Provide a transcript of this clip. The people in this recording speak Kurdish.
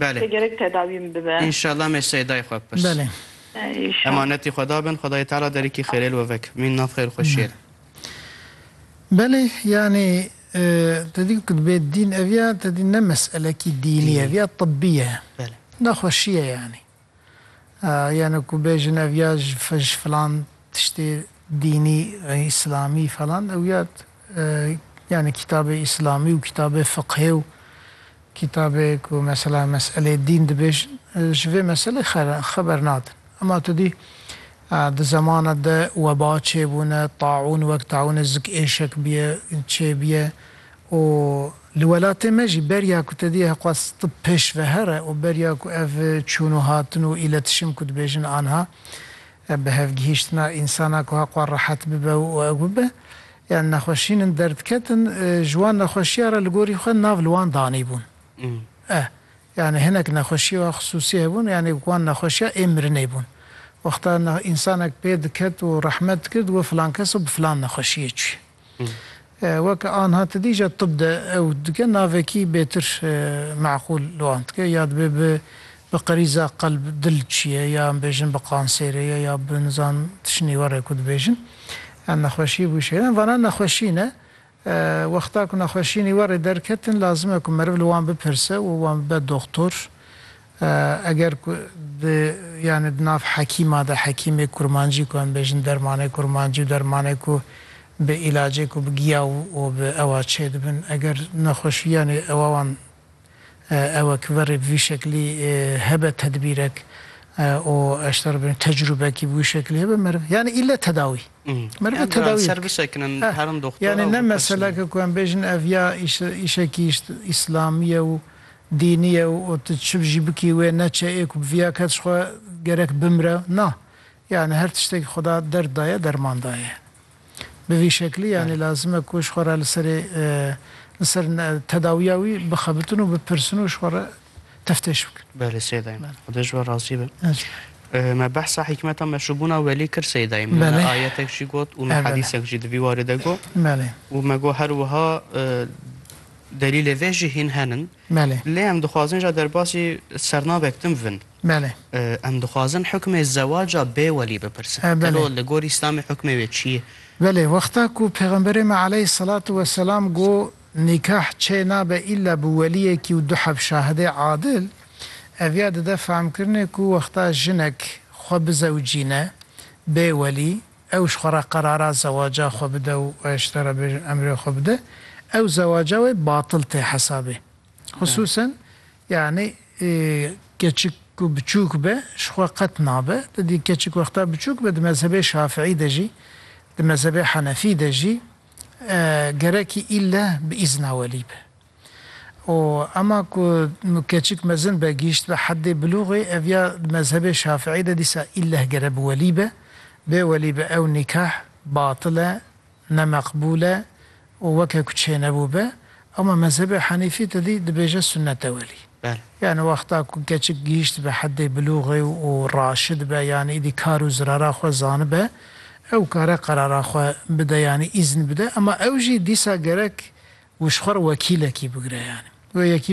Belê. Te gerek tedawî min bibe. Înşallah me Seydayê xwe bipirs. Belê. Înşallah. Emanetî Xweda bin, Xwedayê Teala derîkî xêrê li we vek. Mîn nav xêr û xweşiyê re. Belê, yanî te dî ku dibê dîn ev ya, te dî ne meselekî dînî ev ya, tibbî ye. Belê. Nexweşî ye yanî. Yane ku bêjin ev ya ji ji filan tiştê dînî îslamî falan ew ya yani kîtabê îslamî û kîtabê fiqhê û kîtabê ku mesela meselê dîn dibêjin ji vê meselê xeber nadin. Ema tu dî di zemana de weba çêbûne, taûn wek taûnê zik êşek bûye çêbûye û Li welatê me jî beriya ku te diyê hexwaz tib pêşvehere û beriya ku ev çûn û hatin û îletişim ku dibêjin anha bihevgihîştina însana ku hexwa rehet bibe û ew bibe yan nexweşîn in derdiketin ji wan nexweşiya re li gorî xwe nav li wan danîbûn e yanî hinek nexweşiya xisûsî hebûn yanî wan nexweşiya ê mirinê bûn wexta însanek pê diket û rehmet dikir digot filan kes bi filan nexweşiyê çûye. Weke anha tedîja tib de ew dike navekî bêtir meqûl li wan dike ya dibe bi bi qerîza qelb dil çiye ya em bêjin bi qansêrê ye ya bi nizan tişinî were ku dibêjin yan nexweşî bû şêre em vana nexweşî ne wexta ku nexweşînî were derketin lazim e ku meriv li wan bipirse û wan bibe doxtor Eger ku di yanî di nav hekîma de hekîmê kurmancî ku em bêjin dermanê kurmancî û dermanê ku bi îlacê ku bi giya û bi ewa çê dibin eger nexweşî yanî ewa wan ewe ki verê bi vî şeklî hebe tedbîrek û eşter bin tecrûbekî bi wî şeklî hebe meriv yanî îlle tedawî merive tedawî ser bisekinin herin doxtora yanî ne meseleke ku em bêjin ev ya îşekî îşlamî ye û Dînî ye û tu çi jî bikî wê neçe ê ku bi viya kes xwe gerek bimre. Na. Yanî her tiştekî Xweda derd daye, derman daye. Bi vî şeklî yanî lazim e ku ji xwe re li serê li ser tedawiya wî bixebitin û bipirsin û ji xwe re teftêş bikin. Belê sey dayim. Xweda ji we razî be. Me behsa hîkmeta meşûbûna welî kir sey dayim. Me ayetek jî got û me hedîsek jî di vî warî de got û me got her wiha, Delîlê vê jî hîn henin. Belê. Lê em dixwazin ja derbasî sernavek din bivin. Belê. Em dixwazin hukmê zewaca bê welî bipirsin. Belê. Gelo li gor Îslamê hukmê wê çi ye? Belê. Wexta ku Pêxemberê me aleyh selatu weselam got nîkah çê nabe îlla bi weliyekî û du heb şahidê adil, ev ya dide fehmkirinê ku wexta jinek xwe bizewicîne bê welî, ew ji xwe re qerara zewaca xwe bide û ji te re bêjin emrê xwe bide, ew zewaca wê batil tê hesabê. Xisûsen yanî keçik ku biçûk be ji xwe qet nabe. Tu dî keçik wexta biçûk be di mezhebê şafîî de jî, di mezhebê henefî de jî gerekî îlle bi îzna welî be. Û ema ku keçik mezin be, gihîşt be heddê bilûxê, ev ya di mezhebê Şafiî de dîsa îlleh gere bi welî be, bê welî be ew nîkah batil e, ne meqbûl e û weke ku çênebû be. Ema mezhebê Henîfî tedî dibêje sunnet e welî. Yanî wexta ku keçik gihîştibe heddê bilûxê û raşidibe yanî îdî kar û zirara xwe zanibe ew kare qerara xwe bide yanî îzn bide ema ew jî dîsa gerek wişxwar wekîlekî bigire yanî wê yekî